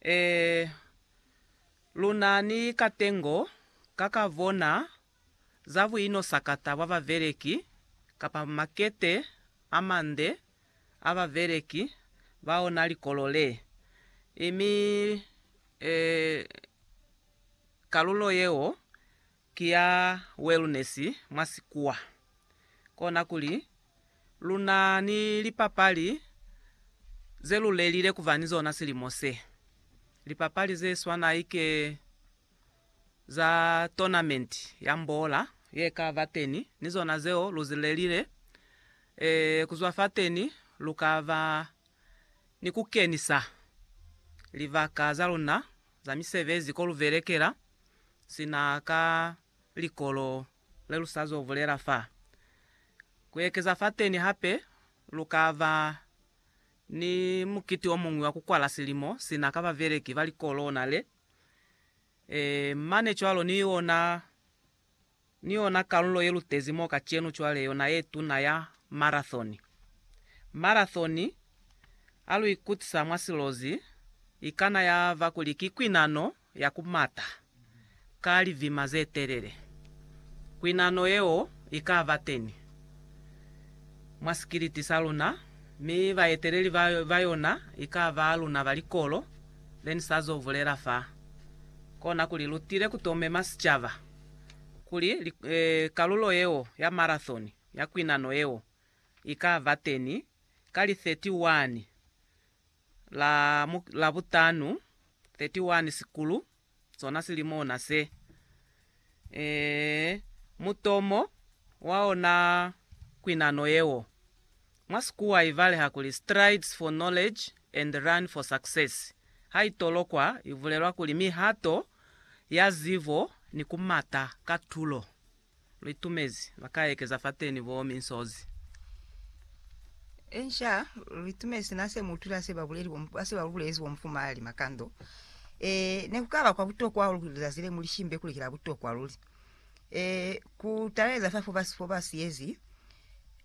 Ee, lunani katengo ka ka bona za buinosakata bwa babeleki kapa makete a mande a babeleki ba ona likolo le. Imi, ee, kalulo yeo Ki ya wellness mwa sikuwa. Kona kuli, lu na ni lipapali ze lu lelile ku ba ni zona silimo se. Lipapali ze swana ike za tournament ya mbola ye ka ba teni, ni zona zeo lu zi lelile. Ee, ku zwa fateni lu ka ba ni ku kenisa libaka za luna za misebezi ko lu belekela, sina ka likolo le lu sa zo bulela fa. Ku ekeza fateni hape, lu ka ba ni mukiti o muñwi wa ku kwala silimo sina ka babeleki ba likolo ona le, e, mane cwalo ni ona. Ni yona kalulo ye lutezi mo kacenu cwale yona ye tuna ya marathoni. Marathoni, ha lu ikutisa mwa silozi, ikana ya ba kuli ki kwinano ya ku mata ka lizima ze telele. Kwinano yeo i ka ba teni mwa sikiliti sa luna, mi baeteleli ba yona i ka ba luna ba likolo le ni sa zo bulela fa. Kona kuli lu tile ku to mema sicaba kuli kalulo yeo ya marathon ya kwinano yeo i ka ba teni ka li 31 la Labutanu, 31 Sikulu, sona silimo ona se. Ee, mutomo wa ona kwinano yeo. Mwa Sikuwa i baleha kuli Strides for Knowledge and Run for Success. Ha i tolokwa, i bulelwa kuli mihato ya zibo ni ku mata ka tulo. Lu itumezi ba ka ekeza fateni bo minsozi. Inca, lu itumezi na se mu utwile ha se ba buleli bo, ha se ba lu bulezi bo Mufumahali Makando. Ee, ne ku ka ba kwa butokwa hahulu kuli lizazi le mu li shimbe kuli ki la butokwa luli. e, ku taleza fa fo ba siyezi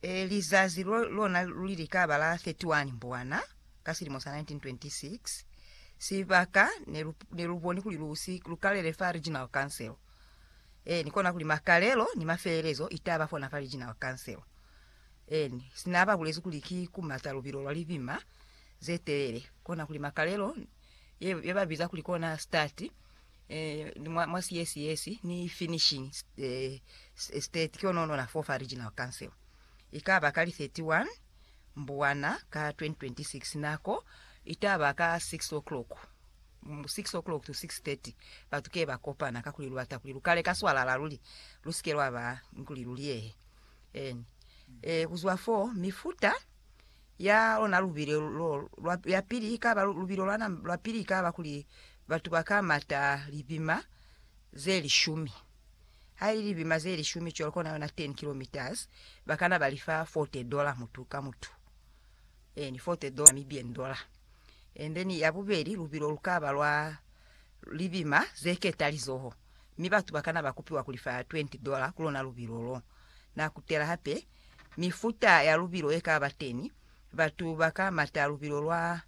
e, lizazi lo lona luli li ka ba la 31 Mbwana ka silimo sa 1926. Sibaka ne lu, ne lu boni kuli lu si lu kalele fa Regional Council. Eni, kona kuli makalelo ni mafelelezo i ta ba fona fa Regional Council. Eni, sina ba bulezi kuli ki ku mata lubilo lwa libima ze telele, kona kuli makalelo ye, ye ba biza kuli kona start, eh, mwa, mwa CSS ni finishing eh, state ke ono nona fofa regional council ikaba ka li 31 mbuwana ka 2026 nako itaba ka 6 o'clock 6 o'clock to 6:30 batu ke ba kopana ka kuli lubata kuli lukale ka swalala luli lusike lwa ba nkuli luliyehe en eh kuzwa fo mifuta ya lona lubile lo lwa ya pili ikaba lubile lwana lwa pili ikaba kuli Batu ba ka mata libima ze lishumi. Ha ili libima ze lishumi cwalo kona yona 10 kilometres, ba kana ba li fa 40 dollar mutu ka mutu. Eeni, 40 dollar, Namibian dollar. And then ya bubeli, lubilo lu ka ba lwa libima ze keta lizoho, mi batu ba kana ba kupiwa ku li fa 20 dollar ku lona lubilo lo. Na kutela hape mifuta ya lubilo ye ka ba teni, batu ba ka mata lubilo lwa.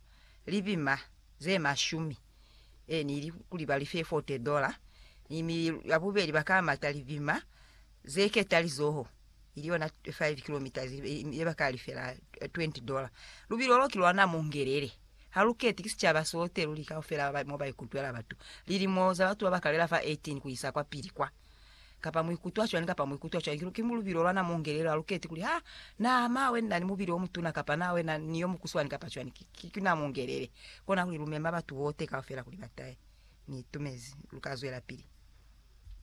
Lipima ze mashumi e ni li kuli ba li fe fote dola, ni mi ya bubeli ba ka mata lipima ze keta lizoho, ili yona five kilometres, ye ba ka lifela twenty dola. Lubilo lo ki lwa na mungelele, ha lu keti ki sicaba sote luli kaufela mo ba ikutwela batu, lilimo za batu ba ba kalela fa eighteen ku isa kwapili kwa. kapa muikutwa cwani kapa muikutwa cwani, ki lubilo lwana mo ngelelo, haluketi kuli ha na mawe nina ni mubili omutuna kapa na wena ni yo mukuswani kapa cwani, ki na mungelele, kona kuli lumema batu bote kaufela kuli batahe. Ni itumezi, luka zwelapili.